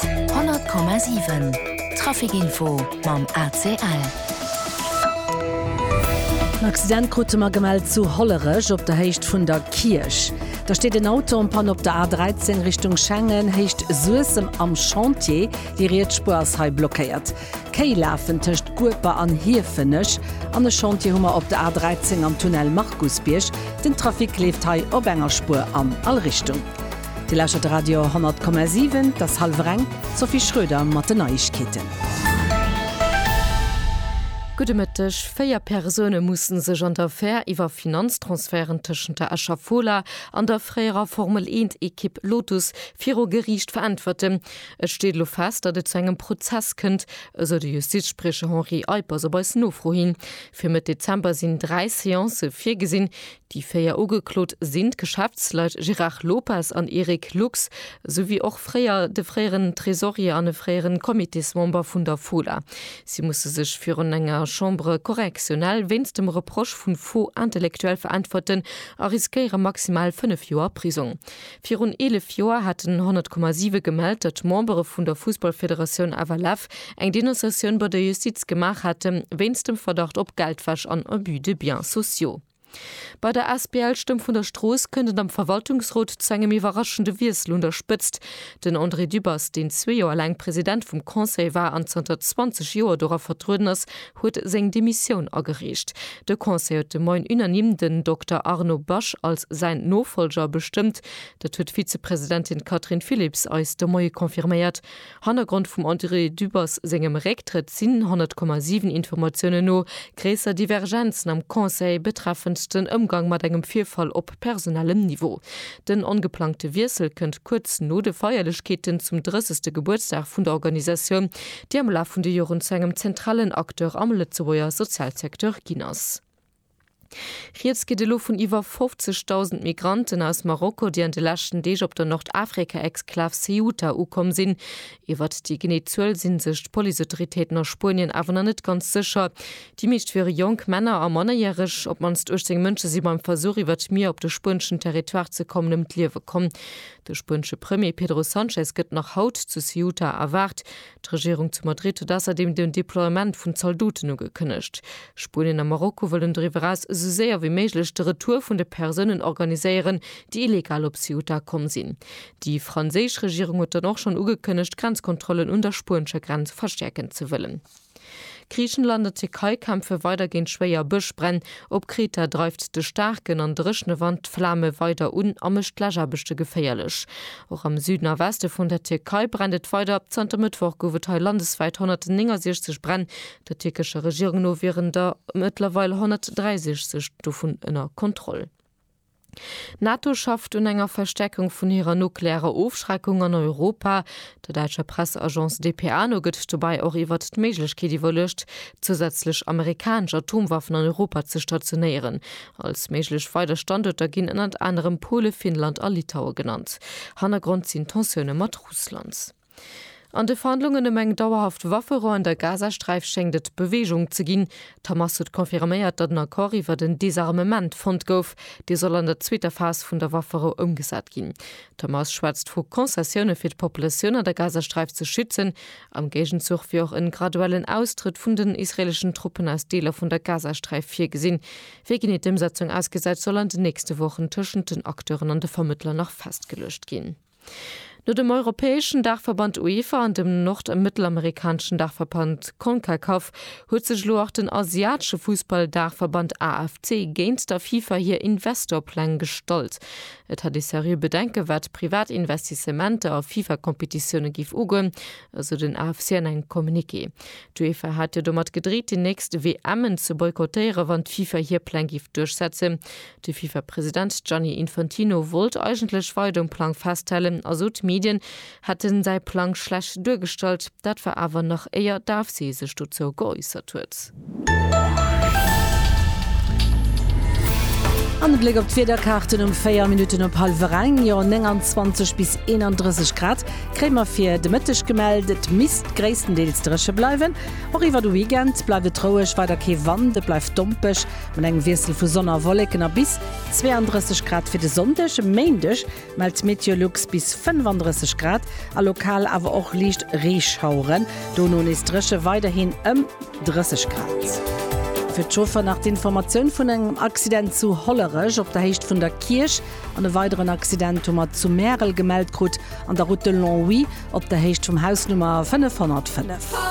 100,7 Trafic Info mam ACL. En Accident krute mer gemellt zu Hollerech op der Héicht vun der Kierch. Da steet en Auto en Panne op der A 13 Richtung Schengen, Héicht Suessem am Chantier. Déi riets Spuer ass hei blockéiert. D'Kéi lafen tëscht Gueper an Hiefenech. An e Chantier hu mer op der A 13 am Tunnel Markusbierg. Den Trafic leeft hei op enger Spuer an all Richtung. Dir lauschtert Radio 10,7, et ass hallwer eng, d'Sophie Schröder mat den Neiegkeeten. Gudde Mëtteg, Véier Persoune musse sech an der Affär iwwer Finanztransferten tëschent der Escher Fola an der fréierer Formel-Eent-Ekipp Lotus viru Geriicht veräntwerten. Et steet elo fest, datt et zu engem Prozess kënnt, esou de Justizspriecher Henri Eippers op eis Nofro hin. Fir Mëtt Dezember sinn dräi Seancë virgesinn, Déi véier Ugeklot sinn d'Geschäftsleit Gérard Lopez an Eric Lux, esou wéi och fréier de fréieren Tresorier an e fréieren Comitésmember vun der Fola. Si musse sech virun enger Chambre correctionnelle wéinst dem Reproche vu Faux intellectuel veräntwerten a riskéiere maximal fënnef Joer Prisong. Virun 11 Joer haten 100,7 gemellt, datt Membere vun der Fussballfederatioun FLF eng Denonciatioun bei der Justiz gemaach hätte wéinst dem Verdacht op Geldwäsch an Abus de biens sociaux. Bei der asbl Stëmm vun der Strooss kënnt et am Verwaltungsrot zu engem iwwerraschende Wiessel un der Spëtzt. Den André Dübbers, deen zwee Joer laang President vum Conseil war an zanter 20 Joer dora vertrueden ass, huet seng Demissioun agereecht. De Conseil huet de Moien unanime den Dokter Arno Basch als säin Nofolger bestëmmt. Dat huet d'Vizepresidentin Catherine Philipps eis de Moie confirméiert. Hannergrond vum André Dübbers sengem Récktrëtt sinn, 100,7 Informatiounen no, gréisser Divergenzen am Conseil betreffend den Ëmgang mat engem Virfall op personellem Niveau. Den ongeplangte Wiessel kënnt kuerz no de Feierlechkeeten zum 30. Gebuertsdag vun der Organisatioun, déi am Laf vun de Joren zu engem zentralen Acteur am Lëtzebuerger Sozialsecteur ginn ass. Rieds geet elo vun iwwer 50.000 Migranten aus Marokko, déi an de leschten Deeg op der Nordafrika-Exklav Ceuta ukomm sinn. Iwwert déi genee Zuel sinn sech d'Policeautoritéiten a Spuenien awer nach net ganz sécher. Déi meescht wiere jonk Männer a Mannerjäreg. Op d'mannst 18 Mënsche si beim Versuch, iwwert d'Mier op de spueneschen Territoire ze kommen, ëm d'Liewe komm. De spuenesche Premier Pedro Sanchez gëtt nach haut zu Ceuta erwaart. D'Regierung zu Madrid huet ausserdeem den Deploiement vun Zaldoten ugekënnegt. Spuenien a Marokko wëllen doriwwer eraus esou séier wéi méiglech de Retour vun de Persounen organiséieren, déi illegal op Ceuta komm sinn. Déi franséisch Regierung huet dann och schonn ugekënnegt, d'Grenzkontrollen un der spuenescher Grenz verstäerken ze wëllen. Griichenland a Tierkei kämpfe weider géint schwéier Bëschbränn. Op Kreta dreift de staarken an dréchne Wand d'Flame weider un a mécht d'Läschaarbechte geféierlech. Och am Süden a Weste vun der Tierkei brennt et weider. Zanter Mëttwoch gouf et hei landeswäit 169 Bränn. Der tierkescher Regierung no wieren der mëttlerweil 163 dovun ënner Kontroll. D'NATO schafft un enger Verstäerkung vun hirer nuklearer Ofschreckung an Europa. Der däitscher Presseagence dpa no gëtt dobäi och iwwert d'Méiglechkeet iwwerluecht, zousätzlech amerikanesch Atomwaffen an Europa ze stationéieren. Als méiglech weider Standuerter ginn ënnert anerem Pole, Finnland a Litaue genannt. Hannergrond sinn d'Tensioune mat Russland. An de Verhandlungen ëm eng dauerhaft Wafferou an der Gazasträif schéngt et Beweegung ze ginn. D'Hamas huet confirméiert, datt en Accord iwwert en Desarmement fonnt gouf. Dee soll an der zweeter Phas vun der Wafferou ëmgesat ginn. D'Hamas schwätzt vu Concessioune fir d'Populatioun an der Gazasträif ze schützen. Am Géigenzuch wier och en graduellen Austrëtt vun den israeleschen Truppen aus Deeler vun der Gazasträif virgesinn. Wéi genee d'Ëmsetzung ausgesäit, soll an den nächste Wochen tëschent den Acteuren an de Vermëttler nach festgeluecht ginn. No dem europäeschen Daachverband UEFA an dem nord a mëttelamerikaneschen Daachverband Concacaf huet sech elo och den asiatesche Fussball-Daachverband AFC géint der FIFA hir Investor-Pläng gestallt. Et hätt ee seriö Bedenken, wat privat Investissementer a FIFA-Competitioune géif ugoen, esou den AFC an engem Communiqué. D'UEFA hat jo domat gedreet, déi nächst WMen ze boykottéieren, wann d'FIFA hir Pläng géif duerchsetzen. De FIFA-President Gianni Infantino wollt eigentlech weider um Plang festhalen a sot, d'Medien hätte säi Plang schlecht duergestallt. Dat war awer nach éier d'AFC sech dozou geäussert huet. An e Bléck op d'Wiederkaarten um 4 Minutten op hallwer eng. Jo, 29 bis 31 Grad kréie mer fir de Mëtteg gemellt. Et misst gréisstendeels dréche bleiwen. Och iwwer de Weekend bleift et roueg, weider kee Wand, et bleift dompeg. Mat engem Wiessel vu Sonn a Wolleken a bis 32 Grad fir de Sonndeg. E Méindeg mellt d'Meteolux bis 35 Grad a lokal awer och liicht Reeschaueren, dono nees dréche, weiderhin ëm 30 Grad. Fir d'Chauffer nach d'Informatioun vun engem Accident zu Hollerech op der Héicht vun der Kierch. An e weideren Accident hu mer zu Märel gemellt krut, an der Route de Longwy op der Héicht vum Haus Nummer 505.